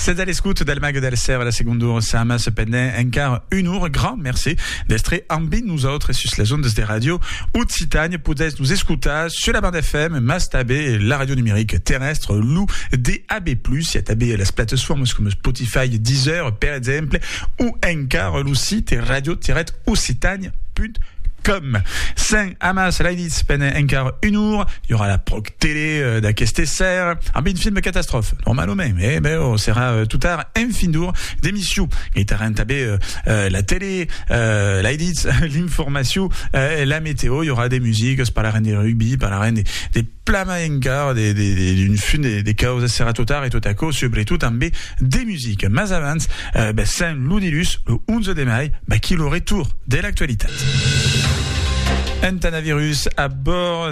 Sètz a l'escòut del Màger del Sèr a la segonda ora. Sàma cependent encara un ora. Grand merci d'èstre ambi nosautres sus las ondas de Radio Occitània. Podètz nos escotar sus la banda FM, mas tanben la ràdio numerica terrèstra, lo DAB+, i a tanben las platesformas coma Spotify, Deezer, per exemple, o encara lo site radio-occitània.com. Sèm amas lainits pendent encara un ora. I aurà la pròxima. Tele d'aqueste ser, amb un film catastròf, normalament, eh, ben, o serà totar un fin d'or d'emission. Gaitaran també la tele, l'ai ditz, l'informacion, la meteo, i aurà de musiques, parlarem de rugbi, parlarem de, de plama encara, de, de, de, d'un fin de, de causas, serà totar e tot aquò, subretot també de musique. Mas abans, ben, Saint Ludilus, lo 11 de mai, ben, qui lo retour de l'actualitat. Un tanavirus a bord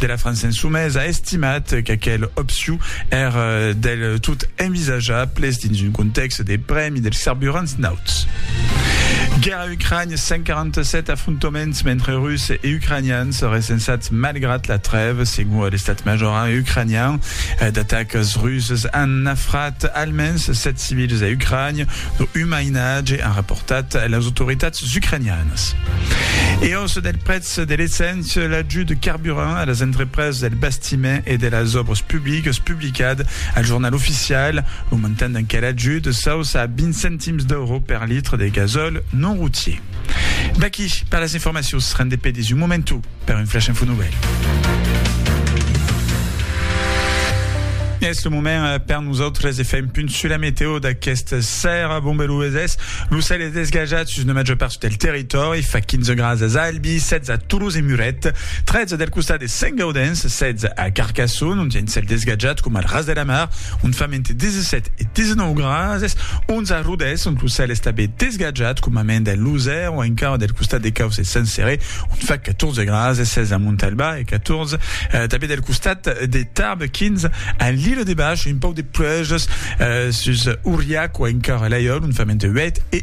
de la França Insumesa a estimat qu'aquel opciu èr del tot envisajables dins un contèxt de prèmi dels carburants nauts. Guèrra Ucrània, 147 afrontoments mentre Russes e Ucranians recensats malgrat la trèva, segon l'estat major ucranian. D'atacas russes an nafrat almens 7 civils a Ucrània, dont un mainatge, an raportat las autoritats ucranianas. E aussa del prètz de l'essent. Se l'ajut de carburant a las entrepresas del bastiment e de las òbras publicas publicat al Jornal Oficial. Lo montant d'enquel ajut s'auça a 20 centims d'euro per litre de gasòl non routier. D'aquí per las informacions, rendez pedis un momentu per un flash info nouvelle. Es lo moment eh, per nosaltres de fer un punt sur la meteo d'aquesta serra. Bon, lo cel es desgajat sus una major part del territori Torri fa 15 grads as Albi, 16 a Toulouse e Muret, 13 del costat de Sent Gaudenç, 16 a Carcasson, ont i a un cèl desgatjat coma al ras de la mar, ont fan mente 17 e 19 grases, 11 a Rodés, ont lo cèl es tanben desgatjat coma ment a Losèr o encara del costat de Cauç e Sent Céré, ont fa 14 grases, 16 a Montalba e 14 tanben del costat de Tarbes, 15 a L'Île-de-Bach e un pauc de pluèjas sus Auriac o encara Laiòl, ont fa mente 8 e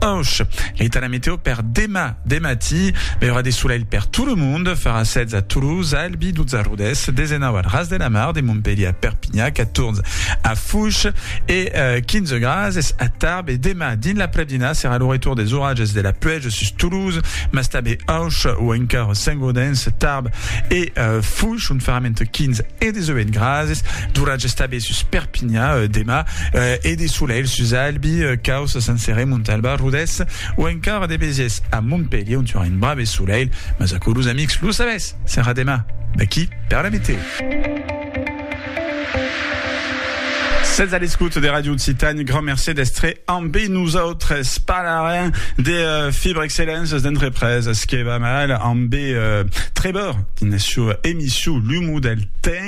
Aush! L'Etat la meteo per demà de matí, mai aurà de solelh per tot lo monde, farà 16 a Toulouse, a Albi, 12 a Rodés, 19 al Ras de la Mar, de Montpelhier a Perpinha, 14 a Fouch e 15 graas es a Tarbes e demà dins l'aprèp-dinà serà lo retour des oratges de la pluèja sus Toulouse, mas tanben Aush o encara Saint-Gaudens, Tarbes e Fouch ont farà entre 15 e 18 graas d'oratges tanben. sus Perpinha demà e de solelh sus Albi, Causse, Sant Cerè, Montalba, Rodés o encara de besièrs a Montpelhier ont i aurà un brave solelh, mas aquò los amics lo sabètz, serà demà d'aqui per la meteo. Sètz a l'escouta de Radio Occitània, grand mercé d'estre ambe nosautres. Parlarem de uh, Fibre Excellence d'entrepreses que va mal ambe uh, Trebor dins la sua emissió L'Humo del Temps.